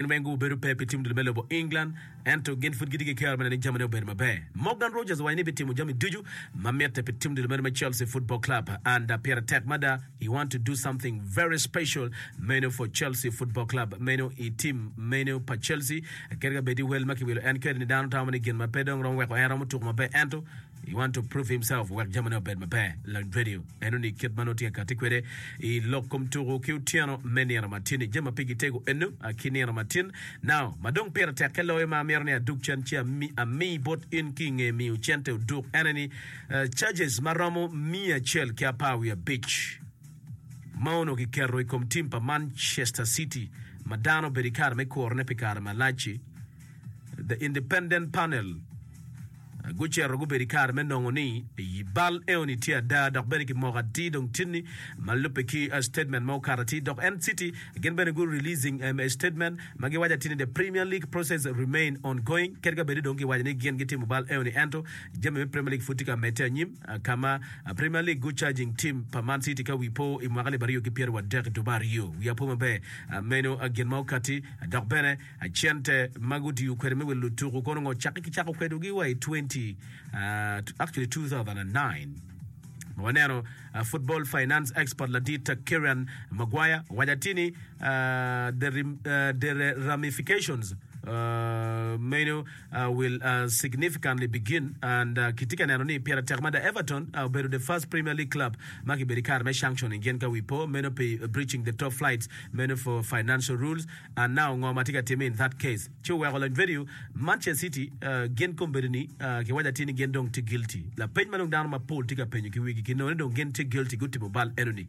Gin weng gubedo pe pi tim dul me lobo England, ento gin pud gitye ki kero me neno ni jamine obedo maber. Morgan Rogers owaco ni bitimo jami ducu ma mitte pi tim dul meno me Chelsea Football Club and da pire tek mada he want to do something very special menu for Chelsea Football Club menu i tim menu pa Chelsea kadi ka bed i wel ma kiwilo en keri ni dano tamo ni gin ma pe dong romo weko en romo tuku maber ento He want to prove himself wek jamine obed maber. Lony Radio eno ni kit ma nongo tye kati kwede i lok kom tuku ki otyeno me nino matin-ni jami ma pigi tego eno ki nino matin now ma dong pire tekke loyo ma amito ni adug cen ci ami bot in ki inge miyo cente oduk ene ni charges ma romo miya acel ki apar wiye abic ma onongo ki keto i kom team pa Manchester City ma dano obedo i kare me kuro ne pi kare malac-ci. The Independent Panel gucito gubedo i kare me nongo ni bal eoni tye ada dok bene ki moko atir dong tini ma lubbe ki statement ma okato atir dok en city gin bene gu releasing a statement ma giwaco atini the Premier League process remain ongoing kadi ka bedi dong giwaco ni gin gitimo bal eoni ento jami me Premier League pud tye ka medde anyim ka ma Premier League gu charging team pa Man City ka wi po i mwaka lib aryo ki pyeraryo ki adek i dwe me aryo wi apo maber meno gin ma okati dok bene Cente ma gutiyo kwede me wilo lutuku kono ngo? Cakke ki cako kwedogi wa i 20, uh, actually 2009 ma waneno uh, football finance expert ladit uh, Kieran Maguire owaco atir ni uh, the, rem, uh, the re- ramifications uh, menu uh, will uh, significantly begin and uh, kitye ka neno ni pire tek mada Everton uh, obedo the first Premier League club ma kibedo i kare me sanctioning gin ka wi po meno pi breaching the top flights meno for financial rules and now ngo ma tye ka timme in that case? Ci oweko lony vedio Manchester City gin kombeddi ni ki waco atir ni gin dong tye guilty. Lapeny ma dong dano ma pol tye ka penyo ki wigi ki nongo ni dong gin tye guilty gutimo bal eno ni,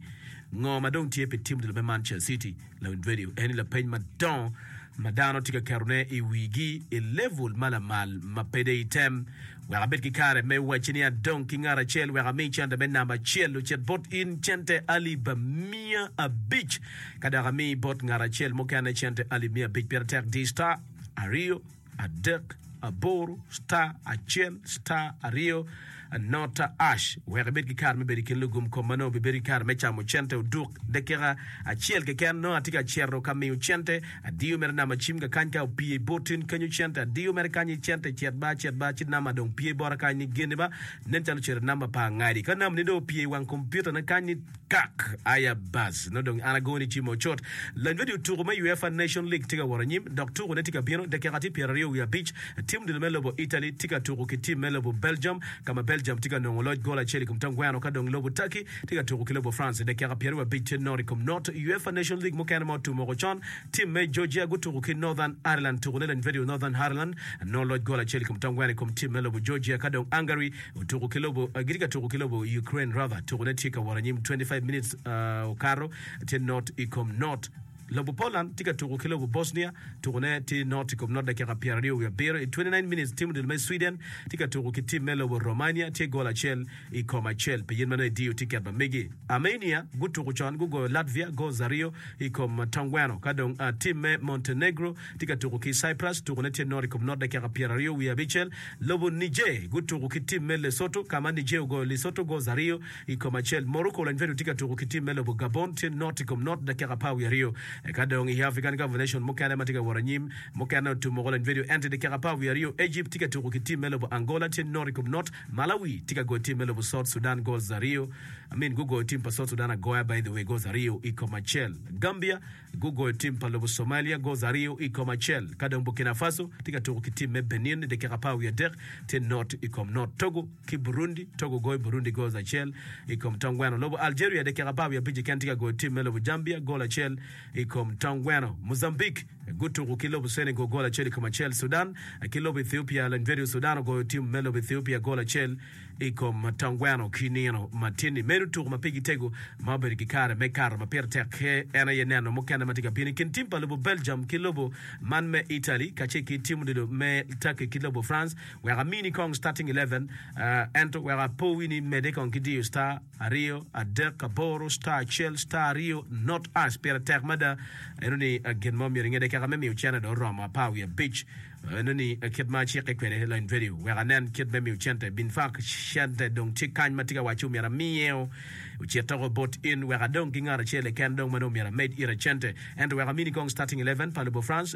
Ngo ma dong tye pi tim odilo me Manchester City? Lony vedio eni lapeny madongo ma dano tye ka keto ne i wigi i level ma lamal ma pe dei item. Wek abed ki kare me wacci ni adong ki ngat acel wek ami cente me namba acel ocit bot in cente alip miya abic, ka dok ami bot ngat acel mukene cente alip miya abic. Pire tek di star aryo adek aboro star acel star aryo nota ash wek ibed ki kare me bedo i kin lugum kom ma nongo bibedo ki kare me camo cente oduk dakika acel keken. Nongo atye ka cito ka miyo cente Adiyo mere nama cim ga kany ka opye i bot tin kenyo cente adiyo mere kany ni cente cet ba cet ba ci nama dong pye bota kany ni geni ba nen calo cere namba pa angadi ka nama ni dong opye i wang kompiuta ne kany ni kak aya bas nongo dong an ago ni ci mo cut lanywadi otuku me UEFA nation league tye ka wot anyim dok tuku ne tye ka bino dakika tye pyera ryo wiye abic tim odilo me lobo Italy tye ka tuku ki tim me lobo Belgium ka ma Belgium tye ka nongo loc gol acel i kom tongweno ka dong lobo Turkey tye ka tuku ki lobo France i dakika pyeraryo abic ki nono i kom note. I UEFA Nations League mukene ma otum woko con, tim me Georgia gutuku ki Northern Ireland tuku ne Lendvediu. Northern Ireland nongo loc gol acel i kom tongweno i kom tim me lobo Georgia ka dong Hungary otuku ki lobo gitye ka tuku ki lobo Ukraine rather tuku ne tye ka wot anyim 25 minutes okato tye note i kom note. Lobo Poland tye ka tuko ki lobo Bosnia, tukone tye not i kom not dakika pyeraryo wiye abiro i 29 minutes, tim odilo me Sweden tye ka tuko ki tim me lobo Romania tye gol acel i kom acel pi yen ma nongo ediyo tiket ma megi. Armenia gutuko con gugoyo Latvia gols aryo i kom tongweno ka dong tim me Montenegro tye ka tuko ki Cyprus, tukone tye not i kom not dakika pyeraryo wiye abicel, lobo Niger gutuko ki tim me Lesotho ka ma Niger ogoyo Lesotho gols aryo I kom acel, Morocco lanywado tye ka tuko ki tim me lobo Gabon, tye not i kom not dakika apar wiye aryo. Eka dong i African Cup nation mukene ma tye ka wot anyim, mukene otum woko lanywado ento i dakika apar wiye aryo Egypt tye ka tuko ki tim me lobo Angola tye not i kom not, Malawi tye ka goyo tim me lobo South Sudan goals aryo, I mean gugoyo tim pa South Sudan agoya by the way goals aryo i kom acel. Gambia. Gugoyo tim pa lobo Somalia gols aryo i kom acel, ka dong Burkina Faso tye ka tuko ki tim me Benin i dakika apar wiye adek, tye not i kom not. Togo ki Burundi, Togo goyo Burundi gols acel i kom tong gweno. Lobo Algeria i dakika apar wiye abic keken tye ka goyo tim me lobo Gambia gol acel i kom tong gweno. Mozambique gutuko ki lobo Senegal gol acel i kom acel. Sudan ki lobo Ethiopia, Lengvedio Sudan ogoyo tim me lobo Ethiopia gol acel. i kom matangweno ki nino matin-ni. Meno tuko ma pigi tego ma obedo ki kare me kato ma pire tek ki en aye neno mukene ma tye ka bino i kin tim pa lobo Belgium ki lobo man me Italy kacel ki tim odilo me Turkey ki lobo France. Wek amini kong starting eleven ento wek apowi ni mede kong ki diyo star aryo adek aboro star acel star aryo not us pire tek mada eno ni gin mo myero ingede keka me miyo cene dong oromo apar wiye abic Enoni aye kit ma acike kwede lain Verio wek anen kit me miyo cente. Bin fak cente dong tye kany ma tika wacci omyero amiye o. Ocit doko bot in wek adong ki ngat acel keken dong ma dong omyero amed ire cente. Ento wek amini kong starting eleven pa lobo France,